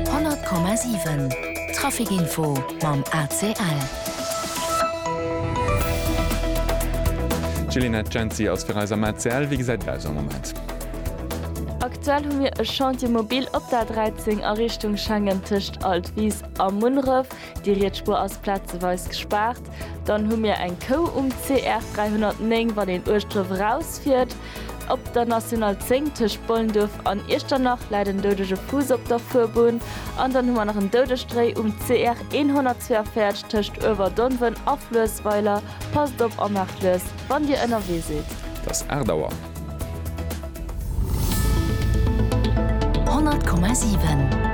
100,7 Trafic Info mam ACL. D'Jelinet Genzi ass fir eis am ACL. Wéi gesäit et aus am Moment? Aktuell hu mir e Chantier mobil op der 13 a Richtung Schengen tëscht Altwis a Munneref. Déi riets Spuer ass plazeweis gespaart. Dann hu mir eng Kou um CR 309, wann een uechtdrëf erausfiert. Op der National 10 tëscht Bollendurf an Iechternach läit en doudege Fuuss op der Fuerbunn. An dann hu mer nach en Doudestréi um CR 142 tëscht Uewerdonven a Fluessweiler. Passt op a maacht lues, wann Dir ënnerwee sidd. Et ass 8 Auer. 100,7.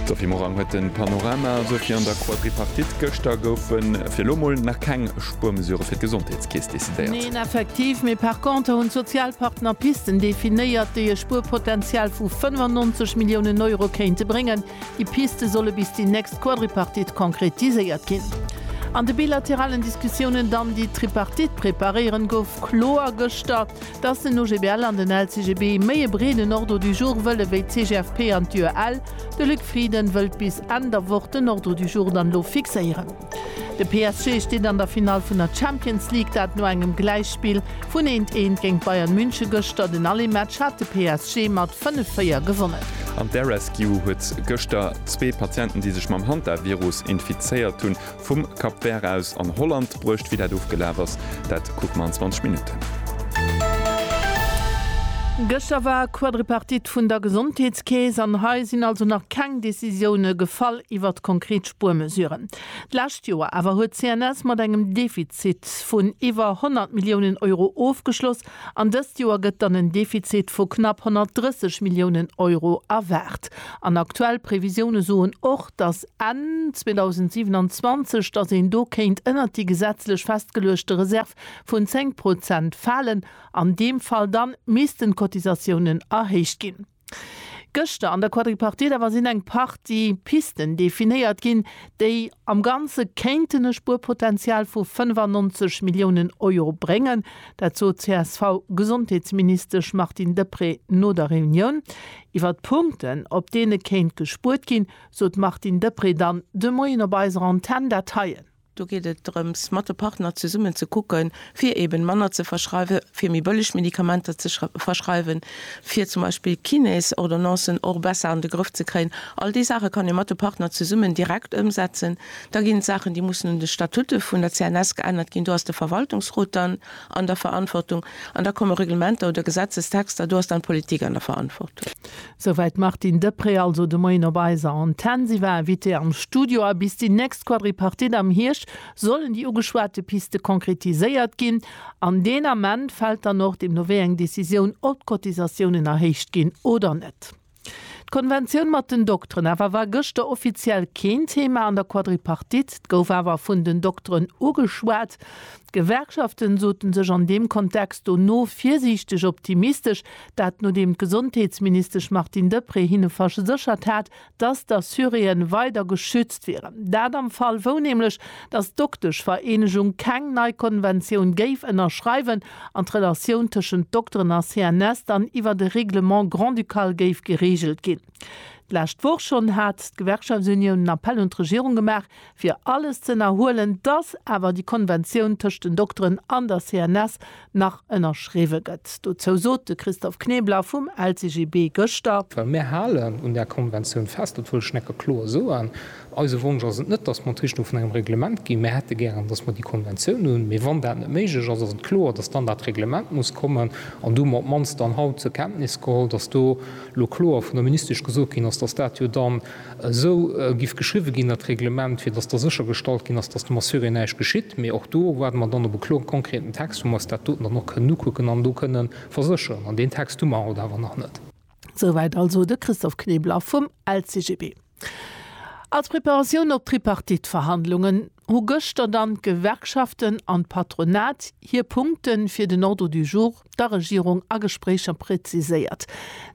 D'Sophie Morang huet den Panorama. Sophie, an der Quadripartite gëschter goufen. Fir elo mol nach keng Spuermesurë fir d'Gesondheetskeess decidéiert. Neen, effektiv, mee par contre hunn d'Sozialpartner Pisten definéiert, déi e Spuerpotential vu 95 Milliounen Euro kéinte bréngen. Déi Piste solle bis déi nächst Quadripartite konkretiséiert ginn. An de bilateralen Diskussiounen dann déi Tripartite preparéieren, gouf kloer gëschter, datt den OGBL an den LCGB méi e breeden Ordre du jour wëlle wéi d'CGFP an d'UEL. De Luc Frieden wëllt bis Enn der Woch den Ordre du jour dann elo fixéieren. De PSG steet an der Finall vun der Champions League, dat no engem Gläichspill vun eent eent géint Bayern München gëschter. Den Allé-Match hat de PSG mat 5, 4 gewonnen. An d'Air-Rescue huet gëschter zwee Patienten, déi sech mam Hantavirus infizéiert hunn, vum Cap Vert aus an Holland bruecht. Wéi dat ofgelaf ass, dat kucke mer an 20 Minutten. Gëschter war Quadripartite vun der Gesondheetskeess an hei sinn also nach keng Decisioune gefall iwwert konkret Spuermesuren. D'lescht Joer awer huet d'CNS mat engem Defizit vun iwwer 100 Milliounen Euro ofgeschloss an dëst Joer gëtt dann en Defizit vu knapp 130 Milliounen Euro erwaart. An aktuell Previsioune soen och, datt Enn 2027, datt een do kéint ënnert déi gesetzlech festgeluechte Reserv vun 10 Prozent falen. An deem Fall da missten d'Cotisatiounen erhéicht ginn. Gëschter an der Quadripartite awer sinn eng Partie Pisten definéiert ginn, déi am Ganze kéinten e Spuerpotenzial vu 95 Milliounen Euro bréngen. Dat sot d'CSV-Gesondheetsministesch Martine Deprez no der Reunioun. Iwwer d'Punkten, op deene kéint gespuert ginn, sot d'Martine Deprez dann de Moien op eiser Antenn dat heien. Do geet et drëms, mat de Partner zesummen ze kucken, fir eeben manner ze verschreiwen, fir méi bëlleg Medikamenter ze verschreiwen, fir zum Beispill Kiné's-Ordonnancen och besser an de Grëff ze kréien. All déi Saache kann ee mat de Partner zesummen direkt ëmsetzen. Da ginn et Saachen, déi mussen un de Statutte vun der CNS geännert ginn. Do ass de Verwaltungsrot dann an der Verantwortung. An da komme Reglementer oder Gesetzestexter, do ass dann d'Politik an der Verantwortung. Souwäit d'Martine Deprez also de Moien op eiser Antenn. Si war Invitée am Studio. A bis déi nächst Quadripartite am Hierscht sollen déi ugeschwate Piste konkretiséiert ginn. An deen Ament fält dann och deemno wéi eng Decisioun, ob d'Cotisatiounen erhéicht ginn oder net. D'Konventioun mat den Dokteren awer war gëschter offiziell keen Thema an der Quadripartite. D'gouf awer vun den Dokteren ugeschwat. D'Gewerkschaften soten sech an deem Kontext do no virsiichteg optimistesch, dat nodeem d'Gesondheetsministesch Martine Deprez hinne verséchert hat, datt d'Assuréen weider geschützt wieren. Dat am Fall wou nämlech, datt d'Dokteschvereenegung keng nei Konventioun géif ënnerschreiwen an d'Relatioun tëschent Dokteren a CNS dann iwwert e Règlement grand-ducal géif gereegelt ginn. D'lescht Woch schonn hat d'Gewerkschaftsunioun en Appell un d'Regierung gemaach, Fir alles z'ënnerhuelen, dass awer déi Konventioun tëscht den Dokteren an der CNS nach ënnerschriwwe gëtt. Dozou sot de Christophe Knebler vum LCGB gëschter. Well mir halen un där Konventioun fest, dat wëll ech necke kloer soen. Eise Wonsch ass et net, dass mer d'Richtung vun engem Reglement ginn. Mir hätte gären, dass mer déi Konventioun hunn. Mee wann dat net méiglech ass, ass et kloer, dass dann dat Reglement muss kommen. An do hu mer op d'mannst dann haut zur Kenntnis geholl, dass do elo kloer vun der Ministesch gesot ginn ass, dass dat jo dann, Esou giff geschriwwe ginn an d'Reglement, fir dass da séchergestallt ginn ass, dass dem Assuré näischt geschitt. Mee och do waarde mer dann op e kloren, konkreten Text, wou mer eis dat doten dann och kënnen ukucken an do kënne versécheren. An deen Text hu mer haut awer nach net. Souwäit also de Christophe Knebler vum LCGB als Preparatioun op d'Tripartite-Verhandlungen. hu gëschter dann d'Gewerkschaften an d'Patronat hir Punkte fir den Ordre du jour der Regierung a Gespréicher präziséiert.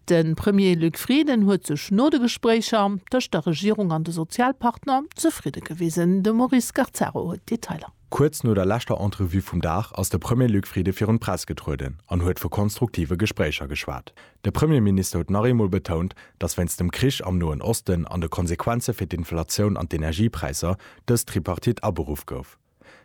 De Premier Luc Frieden huet sech no de Gespréicher tëscht der Regierung an de Sozialpartner zefridde gewisen. De Maurice Scarcero huet d'Detailer. Kuerz no der leschter Entrevue vum Dag ass de Premier Luc Frieden virun d'Press getrueden an huet vu konstruktive Gespréicher geschwat. De Premierminister huet nach eemol betount, datt wéinst dem Krich am Noen Osten an de Konsequenze fir d'Inflatioun an d'Energiepräisser dës Tripartite aberuff gouf.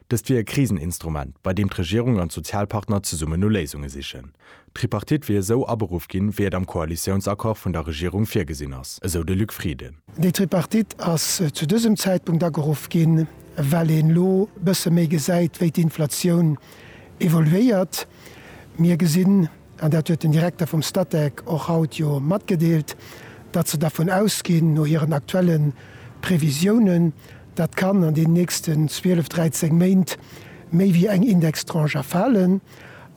Dëst wier e Kriseninstrument, bei deem d'Regierung an d'Sozialpartner zesummen no Léisunge sichen. D'Tripartite wier esou aberuff ginn, wéi et am Koalitiounsaccord vun der Regierung virgesinn ass, esou de Luc Frieden. Déi Tripartite ass zu dësem Zäitpunkt ageruff ginn, well een elo e bësse méi gesäit, wéi d'Inflatioun evoluéiert. Mir gesinn, an dat huet den Direkter vum Statec och haut jo matgedeelt, datt se dervun ausginn, no hiren aktuelle Previsiounen, datt d'Can an deenen nächsten 12, 13 Méint méi wéi eng Indextranche erfalen.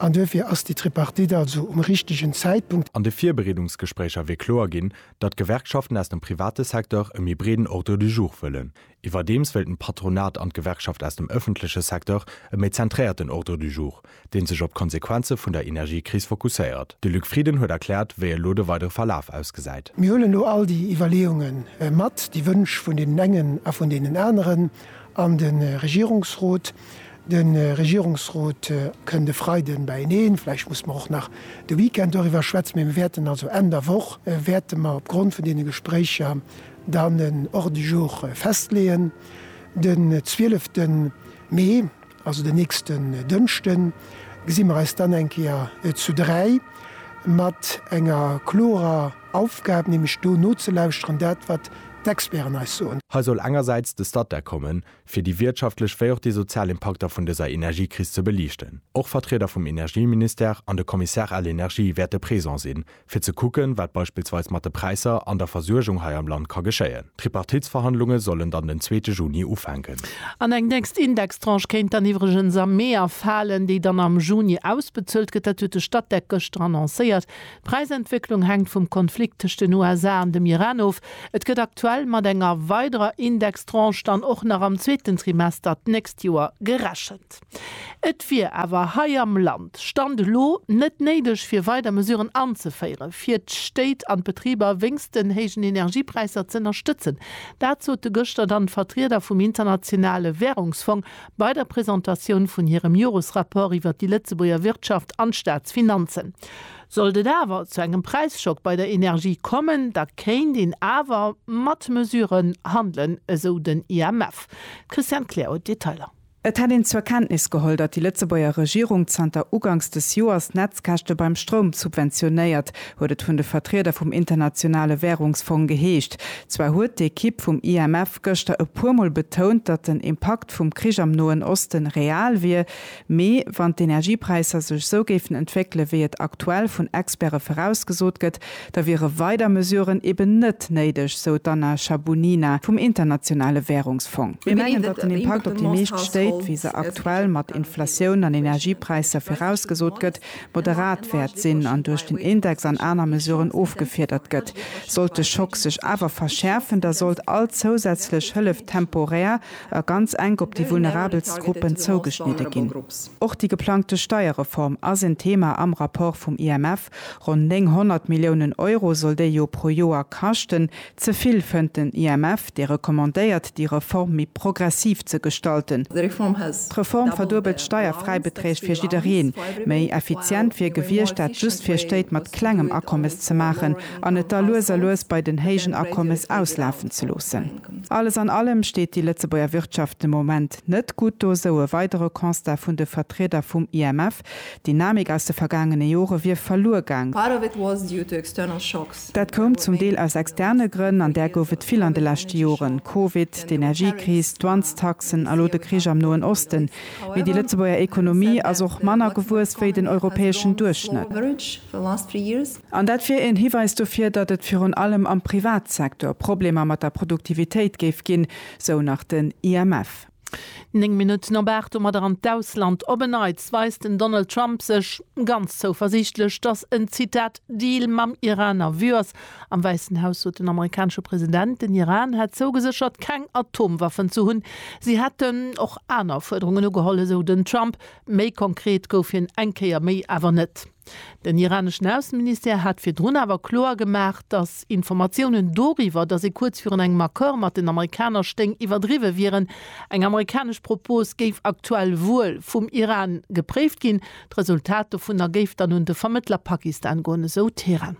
An duerfir ass déi Tripartite also um richtegen Zäitpunkt. An de Virbereedungsgespréicher wier kloer ginn, datt d'Gewerkschaften aus dem private Secteur e méi breeden Ordre du jour wëllen, Iwwerdeems wéilten d'Patronat an d'Gewerkschaft aus dem ëffentleche Secteur e méi zentréierten Ordre du jour, dee sech op d'Konsequenze vun der Energiekris fokusséiert. De Luc Frieden huet erkläert, wéi elo de weidere Verlaf ausgesäit. Mir huelen elo all déi Iwwerleeunge mat, déi Wënsch vun deenen engen a vun deenen aneren an de Regierungsrot. De Regierungsrot kënnt e Freiden beieneen, vläicht musse mer och nach de Weekend doriwwer schwätzen, mä mir wäerten also Enn der Woch wäerte mer opgrond vun deene Gespréicher Dann en Ordre du jour festleeën. Den 12 Mee, also den nächsten Dënschden, gesi mer eis dann eng Kéier zu dräi mat enger klorer Aufgab, nämlech do nozelauschteren, dat wat d'Experten eis soen. Hei soll engersäits de Statec kommen, fir déi wirtschaftlech wéi och déi sozial Impakter vun dëser Energiekris ze beliichten. Och Vertrieder vum Energieministère an de Commissaire à l'Energie wäerte présent sinn, fir ze kucken, wat beispillsweis mat de Präisser an der Versuergung hei am Land ka geschéien. D'Tripartitsverhandlunge sollen dann den zweete Juni ufänken. An eng nächst Indextranche kéint dann iwwregens am Mee erfalen, déi dann am Juni ausbezuelt gëtt. Dat huet de Statec gëschter annoncéiert. D'Präisentwécklung hänkt vum Konflikt tëscht den USA an dem Iran of. Et gëtt aktuell mat enger weiderer Indextranche dann och nach am zweeten Trimester d'nächst Joer gerechent. Et wier awer hei am Land, Stand elo, net néideg fir weider Mesuren anzeféiere fir d'Stéit an d'Betriber wéinst den héijen Energiepräisser z'ënnerstëtzen. Dat sote gëschter dann d'Vertrieder vum Internationale Wärungsfong bei der Presentatioun vun hirem Joresrapport iwwer déi Lëtzebuerger Wirtschaft an d'Staatsfinanzen. Sollt et awer zu engem Präisschock bei der Energie kommen, da kéint een awer mat Mesuren handelen, esou den IMF. D'Christiane Kleer huet d'Detailer. Et hätt een zur Kenntnis geholl, datt déi Lëtzebuerger Regierung zanter ugangs des Joers d'Netzkäschte beim Stroum subventionéiert, huet et vun de Vertrieder vum Internationale Wärungsfong geheescht. Zwar huet d'Ekipp vum IMF gëschter e puer Mol betount, datt den Impakt vum Krich am Noen Oste real wier, mee wann d'Energiepräisser sech sou géifen entwéckele wéi et aktuell vun Experte virausgesot gëtt, Da wiere weider Mesuren eben net néideg, sou d'Anna Shabunina vum Internationale Währungsfong. Mir mengen, datt den Impakt op déi meescht Stéit, wéi se aktuell mat Inflatioun an Energiepräisser virausgesot gëtt, moderat wäert sinn an duerch den Index an aner Mesuren ofgefiedert gëtt. Sollt de Schock sech awer verschäerfen, da sollt all zousätzlech Hëllef temporär a ganz enk op déi vulnerabelst Gruppen zougeschnidde ginn. Och déi geplangte Steierreform ass en Thema am Rapport vum IMF, Stëpp. Ronn 900 Milliounen Euro soll déi jo pro Joer kaschten. Ze vill, fënnt den IMF, dee recommandéiert, déi Reform méi progressiv ze gestalten. D'Reform verduebelt d'Steierfräibeträg fir jiddereen. Méi effizient wier gewiescht, dat just fir Stéit mat klengem Akommes ze maachen an et da lues a lues bei den héijen Akommes auslafen ze loossen. Alles an allem steet déi Lëtzebuerger Wirtschaft de Moment net gutt do, sou e weidere Constat vun de Vertrieder vum IMF. D'Dynamik aus de vergaangene Jore wier verluer gaang. Dat koum zum Deel aus externe Grënn, an där gouf et vill an de leschte Joren, Covid, d'Energiekris, d'Dwanstaxen a lo de Krich am Noen Osten. Mee déi Lëtzebuerger Ekonomie ass och manner gewuess wéi den europäeschen Duerchschnëtt. An dat wier een Hiweis dofir, datt et virun allem am Privatsektor Problemer mat der Produktivitéit géif ginn, sou nach den IMF. Néng Minutten op 8 domadder an d'Ausland. Op en Neits weist den Donald Trump sech ganz zouversiichtlech, datt en, Zitat, Deal mam Iran a Vue ass. Am Wäissen Haus sot den amerikanesche President, den Iran hätt zougeséchert, keng Atomwaffen ze hunn. Si hätten och aner Fuerderungen ugeholl, esou den Trump. Méi konkret gouf hien eng Kéier méi awer net. Den iraneschen Ausseministère hat virdrun awer kloer gemaach, datt Informatiounen doriwwer, datt ee kuerz virun engem Accord mat den Amerikaner stéing, iwwerdriwwe wieren. Eng amerikanesch Propos géif aktuell wuel vum Iran gepréift ginn. D'Resultat dovunner géif dann un de Vermëttler Pakistan goen, esou Teheran.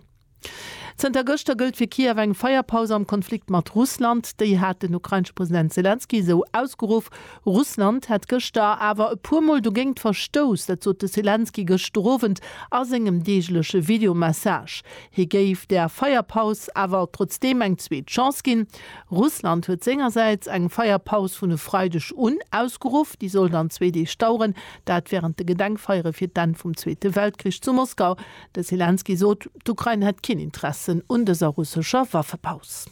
Zënter gëschter gëllt fir Kiew eng Feierpaus am Konflikt mat Russland. Déi hat den ukrainesche President Selenskyj esou ausgeruff. Russland hätt gëschter awer e puer Mol dogéingt verstouss. Dat sot de Selenskyj gëschter Owend a sengem deegleche Videomessage. Hie géif der Feierpaus awer trotzdeem eng zweet Chance ginn. Russland huet sengersäits eng Feierpaus vun e Freideg un ausgeruff. Déi soll dann zwee Deeg daueren, dat wärend de Gedenkfeiere fir d'Enn vum Zweete Weltkrich zu Moskau. De Selenskyj sot, d'Ukrain hätt keen Interessen un dëser russescher Waffepaus.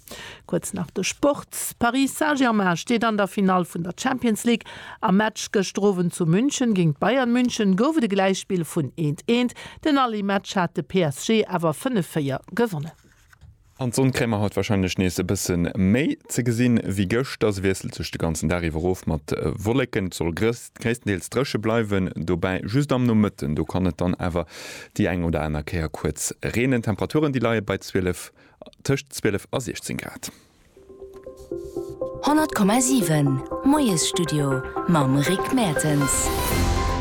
Kuerz nach de Sport, Paris Saint-Germain steet an der Finall vun der Champions League. Am Match gëschter Owend zu München géint Bayern München gouf et e Gläichspill vun eent, eent. Den Aller-Match hat de PSG awer 5, 4 gewonnen. An d'Sonn kréie mer haut warscheinlech nees e bësse méi ze gesinn ewéi gëschter. Se wiesselt sech de ganzen Dag iwwer of mat Wolleken. Et soll gréisstendeels dréche bleiwen, dobäi just am Nomëtten, do kann et dann awer déi eng oder aner Kéier kuerz reenen. D'Temperaturen, déi leie bei 12, tëscht 12 a 16 Grad. 100,7 Moiesstudio mam Rick Mertens.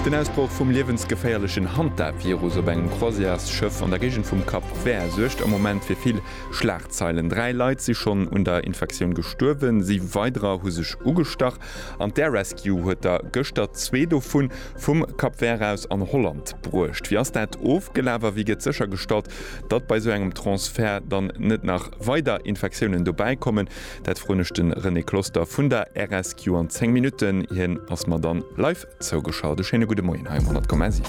Den Ausbroch vum liewensgeféierlechen Hantavirus op engem Croisièresschëff an der Géigend vum Cap Vert suergt am Moment fir vill Schlagzeilen. Dräi Leit si schonn un der Infektioun gestuerwen, si weiderer hu sech ugestach an d'Air Rescue huet der gëschter zwee dovu vum Cap Vert aus an Holland bruecht. Wéi ass dat ofgelaf a wéi gëtt séchergestallt, Datt bei esou engem Transfert dann net nach weider Infektiounen dobäi kommen, dat froen ech de René Closter vun der RSQ an 10 Minutten. Hien ass mer dann live zougeschalt. E schéine gudde Moien hei um 100,7.